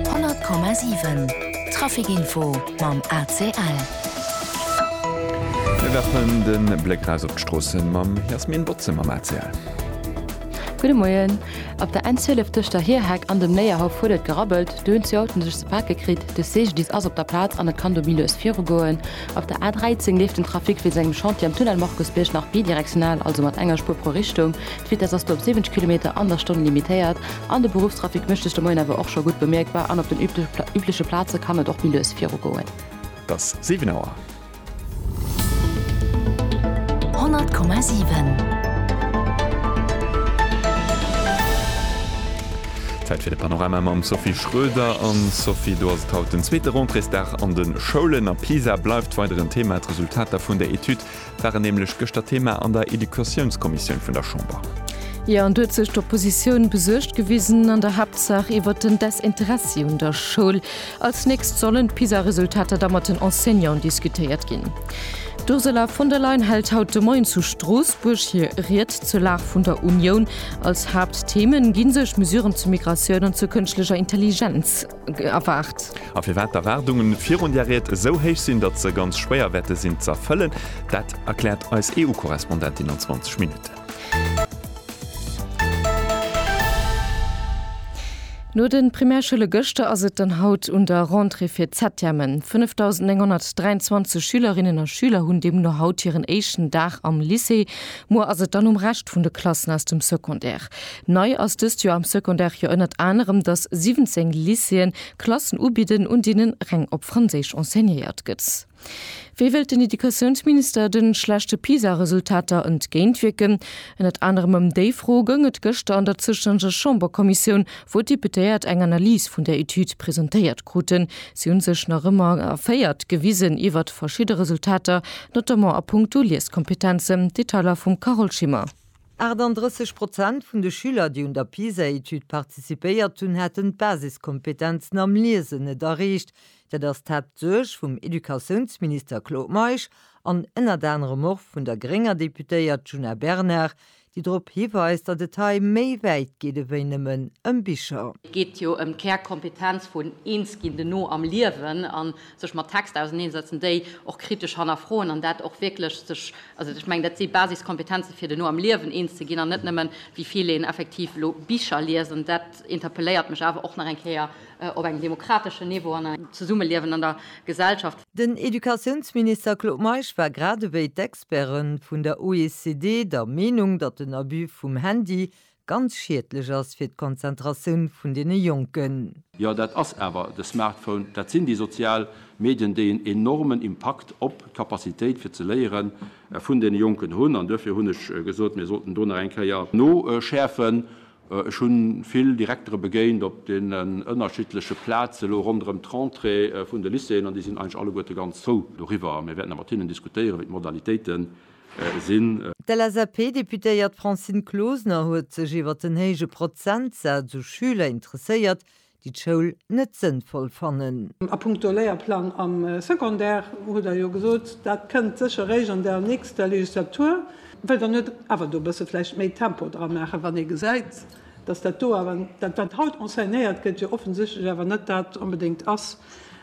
100,7 Traficinfo mam ACL. Mir werfen den Bléck raus op d'Stroossen mam Jasmin Botze mam ACL. Gudde Moien. Op der N12 tëscht der Hierheck an dem Léierhaff huet et gerabbelt. Do hunn zwee Autoen sech ze pake kritt. De CGDIS ass op der Plaz an et kann dobi lues virugoen. Op der A13 leeft den Trafic wéinst engem Chantier am Tunnel Markusbierg nach bidirektional, also mat enger Spuer pro Richtung. D'Vitess ass do op 70 Kilometer an der Stonn limitéiert. An de Beruffstrafic mécht sech de Moien awer och scho gutt bemierkbar an op den übleche Plaze kann et och méi lues virugoen. Et ass 7 Auer. 100,7. Zäit fir de Panorama mam Sophie Schroeder. An Sophie, do ass et haut den zweete Rentréesdag an de Schoulen a Pisa bleift weider en Thema, d'Resultater vun der Etüd. waren nämlech gëschter Thema an der Educatiounskommissioun vun der Chamber. Jo, an do huet sech d'Oppositioun besuergt gewisen, an der Haaptsaach iwwert den Desinteressi un der Schoul. Als nächst sollen d'PISA-Resultater da mat den Enseignanten diskutéiert ginn. D'Ursula von der Leyen hält haut de Moien zu Stroossbuerg hir Ried zur Lag vun der Unioun. Als Haaptthemen gi sech Mesuren zu Migratioun an zur kënschtlecher Intelligenz. erwaart. A firwat d'Erwaardunge virun där Ried esou héich sinn, datt se ganz schwéier wäerte sinn ze erfëllen, dat erkläert eis EU-Korrespondentin an 20 Minutten. No de Primärschoule gëschter ass et dann haut un der Rentrée fir d'Septièmen. 5.923 Schülerinnen a Schüler hunn deemno haut hiren éischten Dag am Lycée. Muer ass et dann um Rescht vun de Klassen aus dem Secondaire. Nei ass dëst Joer am Secondaire jo ënnert anerem, datt 17 Lycéeën Klassen ubidden, un deenen reng op Franséisch enseignéiert gëtt. Wéi wëllt den Educatiounsminister de schlechte PISA-Resultater entgéintwierken? Ënnert anerem ëm déi Fro goung et gëschter an der zoustännege Chamberkommissioun, wou d'Deputéiert eng Analys vun där Etüd presentéiert kruten. Si hu sech nach ëmmer erféiert gewisen iwwert verschidde Resultater, notamment a puncto Lieskompetenzen. Detailer vum Carole Schimmer. 38 Prozent vun de Schüler, déi un der PISA-Etüd participéiert hunn, hätten d'Basiskompetenzen am Liesen net erreecht. Dat ass d'Haaptsuerg vum Educatiounsminister Claude Meisch an ënnert anerem och vun der grénger Deputéiert Djuna Bernard, déi drop hiweist, datt et hei méi wäit geet ewéi nëmmen ëm Bicher. Et geet jo ëm d'Kärkompetenz vun eens ginn, den No am Liewen. sech mat Texter auseneensetzen, déi och kritesch hannerfroen an dat och wierklech sech, also ech mengen dat si Basiskompetenze fir duerno am Liewen eens ze ginn an net nëmmen wéi vill een effektiv elo Bicher liest an dat interpelléiert mech awer och nach eng Kéier op engem demokrateschen Niveau an engem Zesummeliewen an der Gesellschaft. Den Educatiounsminister Claude Meisch war grad ewéi d'Experte vun der OECD der Meenung, datt den Abus vum Handy ganz schiedlech ass fir d'Konzentratioun vun deene Jonken. Jo, dat ass awer de Smartphone, dat sinn déi sozial Medien, déi en enormen Impakt op d'Capacitéit fir ze léiere vun deene Jonken hunn. An duerfir hunn ech gesot, mir sollten do nach eng Kéier noschäerfen. Ech hu vill Direktere begéint op deenen ënnerschiddleche Plaze lo ronderëm d'Rentrée vun de Lycéeën an déi sinn eigentlech alleguerte ganz frou doriwwer. Mir wäerten da mat hinnen diskutéieren, wéi d'Modalitéite sinn. D'LSAP-Deputéiert Francine Closener huet sech iwwer den héije Prozentsaz u Schüler interesséiert, déi d'Schoul net sënnvoll fannen. A puncto Léierplang am Secondaire hutt Der jo gesot, dat kënnt sécher réischt an der nächster Legislatur. Wëllt Der net awer do e bësse vläicht méi Tempo dra maachen, wann ee gesäit, datt dat do awer, dat wat haut enseignéiert gëtt, jo offensichtlech awer net dat onbedéngt ass,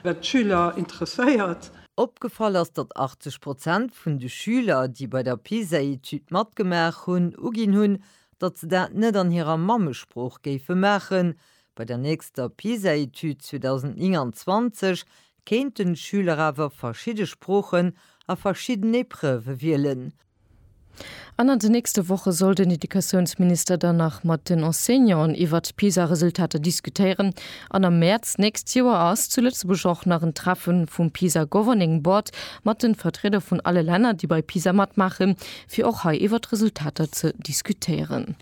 wat d'Schüler interesséiert? Opgefall ass, datt 80 Prozent vun de Schüler, déi bei der PISA-Etüd matgemaach hunn, uginn hunn, datt se dat net an hirer Mammesprooch géife maachen. Bei der nächster PISA-Etüd 2029 kéinten d'Schüler awer verschidde Sproochen a verschidden Epreuve wielen. An an den nächste Woche soll den Educatiounsminister dann nach mat den Enseignanten iwwert d'PISA-Resultater diskutéieren. An am Mäerz d'nächst Joer ass zu Lëtzebuerg och nach en Treffe vum PISA Governing Board mat de Vertrieder vun alle Länner, déi bei PISA matmaachen, fir och hei iwwert d'Resultater ze diskutéieren.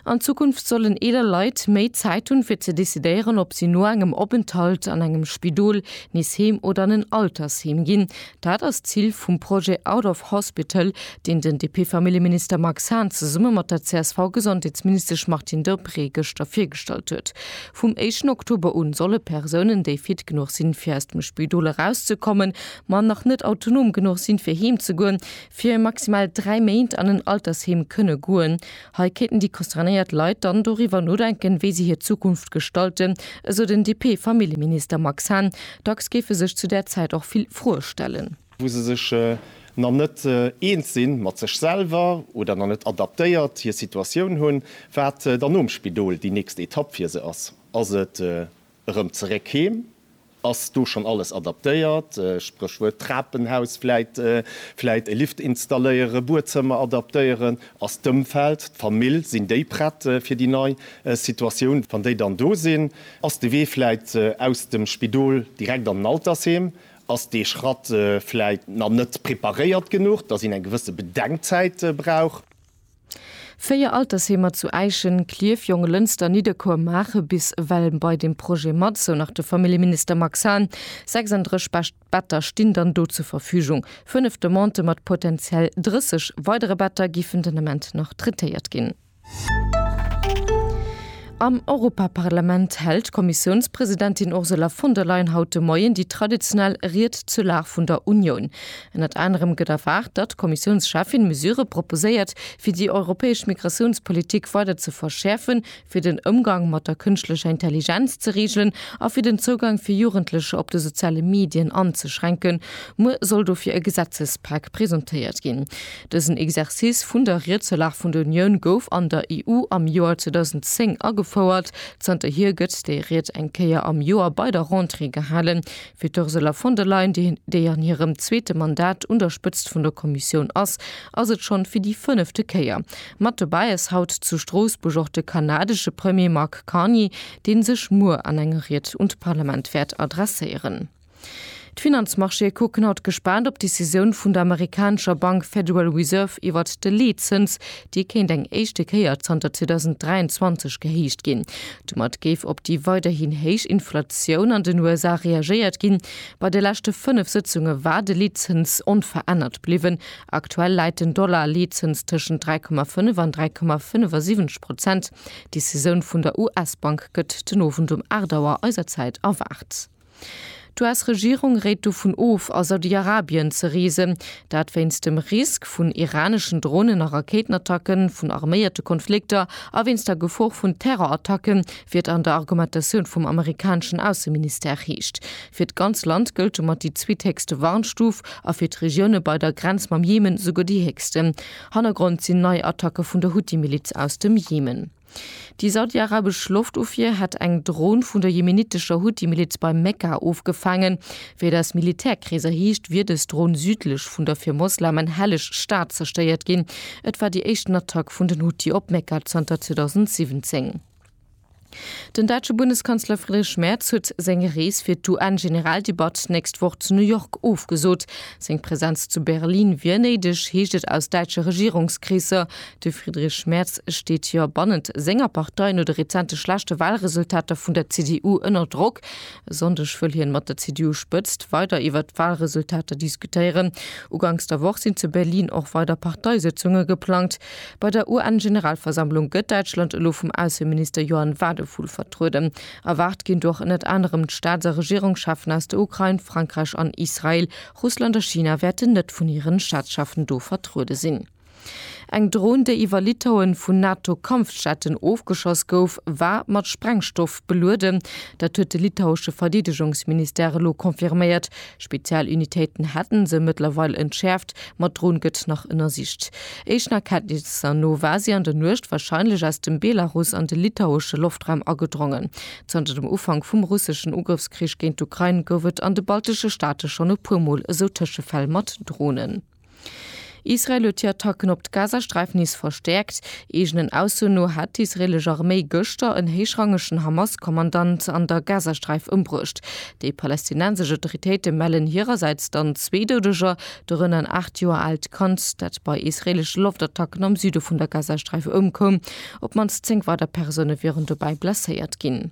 An Zukunft sollen eeler Leit méi Zäit hunn, fir ze decidéieren, ob si no engem Openthalt an engem Spidol nees heem oder an en Altersheem ginn. Dat ass d'Zil vum Projet Out of Hospital, deen den DP-Familljeminister Max Hahn zesumme mat der CSV-Gesondheetsministesch Martine Deprez gëschter virgestallt huet. Vum éischten Oktober un solle Persounen, déi fit genuch sinn, fir aus dem Spidol erauszekommen, ma nach net autonom genuch sinn, fir heemzegoen, fir maximal dräi Méint an en Altersheem kënne goen. Hei kéinten déi concernéiert Leit dann doriwwer nodenken, wéi si hir Zukunft gestalten, esou den DP-Familljeminister Max Hahn. Dacks géife sech zu där Zäit och vill Froe stellen. wou se sech nach net eens sinn mat sech selwer oder nach net adaptéiert hir Situatioun hunn, wat dann nom Spidol déi nächst Etapp fir se ass. Ass et Erëm zeréck heem. Ass do schonn alles adaptéiert? Spréchwuert Trapenhaus, vläit, vläit e Lift installéieren, Buedzëmmer adaptéieren? Ass d'Ëmfeld, d'Famill, sinn déi prett fir déi nei Situatioun, wann déi dann do sinn? Ass de Wee vläit aus dem Spidol direkt an den Altersheem? Ass dee Schratt vläit nach net preparéiert genuch, datt een eng gewësse Bedenkzäit brauch? Véier Altersheemer zu Äischen, Klierf, Jonglënster, Nidderkuer maache bis ewell bei deem Projet mat, sou nach de Familljeminister Max Hahn. 36 Better stinn dann do zur Verfügung. Fënnef Demandë mat potenziell 30 weidere Better géifen den Ament nach traitéiert ginn. Am Europaparlament hält d'Kommissiounspresidentin Ursula von der Leyen haut de Moien déi traditionell Ried zur Lag vun der Unioun. Ënnert anerem gëtt erwaart, datt d'Kommissiounscheffin Mesurë proposéiert, fir déi europäesch Migratiounspolitik weider ze verschäerfen, fir den Ëmgang mat der kënschtlecher Intelligenz ze reegelen a fir den Zougang fir Jugendlecher op de soziale Medien anzeschränken. Muer soll dofir e Gesetzespak presentéiert ginn. Dësen Exercice vun der Ried zur Lag vun der Unioun gouf an der EU am Joer 2010 agefouert. Zanterhier gëtt déi Ried eng Kéier am Joer bei der Rentrée gehalen. Fir d'Ursula von der Leyen, déi an hirem zweete Mandat un der Spëtzt vun der Kommissioun ass, ass et schonn fir déi fënnefte Kéier. Mat dobäi ass haut zu Stroossbuerg och de kanadesche Premier Mark Carney, dee sech muer an enger Ried un d'Parlament wäert adresséieren. D'Finanzmarchéë kucken haut gespaant op d'Decisioun vun der amerikanescher Bank Federal Reserve iwwert de Leetzëns, Déi kéint eng éischte Kéier zanter 2023 gehéicht ginn. Domat géif op déi weiderhin héich Inflatioun an den USA reagéiert ginn. Bei de leschte fënnef Sëtzunge war de Leetzëns onverännert bliwwen. Aktuell läit den Dollar-Leetzëns tëschent 3,5 an 3,75 Prozent. D'Decisioun vun der US-Bank gëtt den Owend um 8 Auer eiser Zäit erwaart. D'US-Regierung réit dovun of, a Saudi-Arabien ze reesen. Dat wéinst dem Risk vun iraneschen Dronen a Rakéitenattacken, vun arméierte Konflikter a wéinst der Gefor vun Terrorattacken, wéi et an der Argumentatioun vum amerikaneschen Ausseministère heescht. Fir d'ganz Land gëllt domat déi zweethéchste Warnstuf a fir d'Regioune bei der Grenz mam Jemen souguer déi héchste. Hannergrond sinn nei Attacke vun der Huthi-Miliz aus dem Jemen. Déi saudiarabesch Loftofwier hätt eng Dron vun der jemenittescher Huthi-Miliz bei Mekka ofgefaangen. Wéi et aus Militärkreeser heescht, wier dës Dron südlech vun der fir Moslemen helleg Stad zerstéiert ginn. Et war déi éischten Attack vun den Huthi op Mekka zanter 2017. Den däitsche Bundeskanzler Friedrich Merz huet seng Rees fir d'UN-Generaldebatt d'nächst Woch zu New York ofgesot. Seng Presenz zu Berlin wier néideg, heescht et aus däitsche Regierungskreesser. De Friedrich Merz steet jo bannent senger Partei no de rezente schlechte Walresultater vun der CDU ënner Drock. E Sonndeg wëll hien mat der CDU-Spëtzt weider iwwert d'Walresultater diskutéieren. Uganks der Woch sinn zu Berlin och weider Parteisëtzunge geplangt. Bei der UN-Generalversammlung gëtt Däitschland elo vum Ausseminister Johann Wadephul vertrueden. Erwaart ginn do och ënnert anerem d'Staats a Regierungscheffen aus der Ukrain, Frankräich an Israel. Russland a China wäerten net vun hiren Staatscheffen do vertruede sinn. Eng Dron, déi iwwer Litauen vun NATO-Kampfjetten ofgeschoss gouf, war mat Sprengstoff belueden. Dat huet de litauesche Verdeedegungsministère elo confirméiert. Spezialunitéiten hätte se mëttlerweil entschäerft, ma d'Dron gëtt nach ënnersicht. Éischten Erkenntnisser no war si an der Nuecht warscheinlech aus dem Belarus an de litauesche Loftraum agedrongen. Zanter dem Ufank vum russeschen Ugrëffskrich géint d'Ukrain gouf et an de baltesche Staate schonn e puer Mol esou Tëschefäll mat Dronen. Israel huet hir Attacken op d'Gazasträif nees verstäerkt. Eegenen Aussoen no hat d'israeelesch Arméi gëschter en héichrangegen Hamas-Kommandant an der Gazasträif ëmbruecht. Déi palästinensesch Autoritéite mellen hirersäits dann zwee Doudeger, dorënner en 8 Joer aalt Kand, dat bei israeelesche Loftattacken am Süde vun der Gazasträif ëmkoum. Op d'mannst 10 weider Persoune wieren dobäi blesséiert ginn.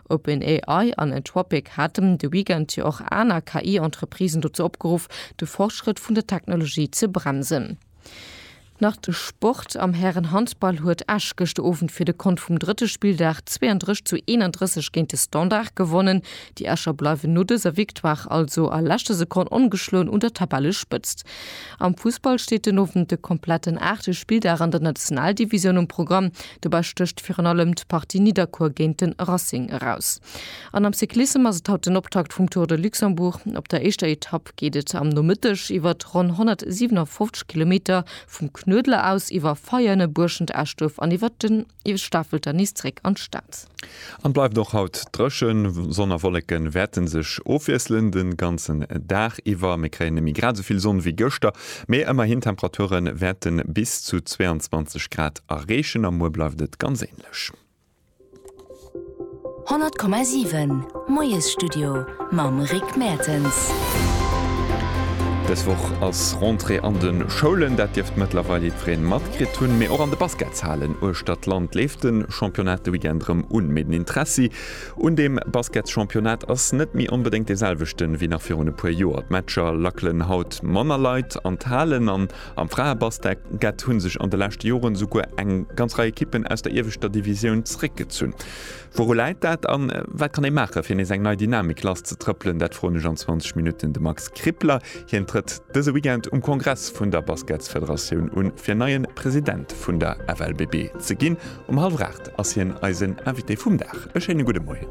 OpenAI an Anthropic haten de Weekend jo och aner KI-Entreprisen dozou opgeruff, de Fortschrëtt vun der Technologie ze bremsen. Nach de Sport, Am Hären-Handball huet Esch gëschter Owend fir de Kont vum drëtte Spilldag 32 zu 31 géint de Standard gewonnen. Déi Escher bleiwen no dëser Victoire also a leschter Sekonn ongeschloen un der Tabellespëtzt. Am Fussball steet den Owend de kompletten aachte Spilldag an der Nationaldivisioun um Programm. Dobäi stécht virun allem d'Partie Nidderkuer géint de Racing eraus. An am Cyclissem ass et haut den Optakt vum Tour de Luxembourg. Op der éischter Etapp geet et am Nomëtteg iwwer ronn 157 Kilometer vum Knuedler aus, iwwer Veianen, Buerschent, Eschduerf an iwwer den Stafelter nees zeréck an d'Stad. An bleift och haut drëchen, Sonn a Wolleken wärten sech ofwiesselen den ganzen Daag iwwer. Mir kréien nemme grad souvill Sonn wéi gëschter, mee emmerhin Temperaturen wärten bis zu 22 Grad erreechen a muer bleift et ganz ähnlech. 100,7 Moiesstudio mam Rick Mertens. Des Woch ass Rentrée an den Schoulen, dat dierft mëttlerweil jiddfereen matkritt hunn, mee och an de Basketshaalen uechtert d'Land leeft den Championnat de Weekend rëm un, mee den Interessi un deem Basketschampionnat ass net méi onbedéngt dee selwechten wéi nach virun e puer Joer. D'Matcher lackelen haut manner Leit an d'Halen an am Fraebasket hu sech an de leschte Joren esouguer eng ganz Rei Ekippen aus der ieweschter Divisioun zeréckgezunn. Wouru läit dat an wat kann ee maachen, fir nees eng nei Dynamik lass ze trëppelen? Dat froen ech an 20 Minutten de Max Krippler. Hien trëtt. Dëse Weekend um Kongress vun der Basketsfederatioun un, fir neien President vun der FLBB ze ginn. Um hallwer 8 ass hien eisen Invité vum Dag. E schéine gudde Moien.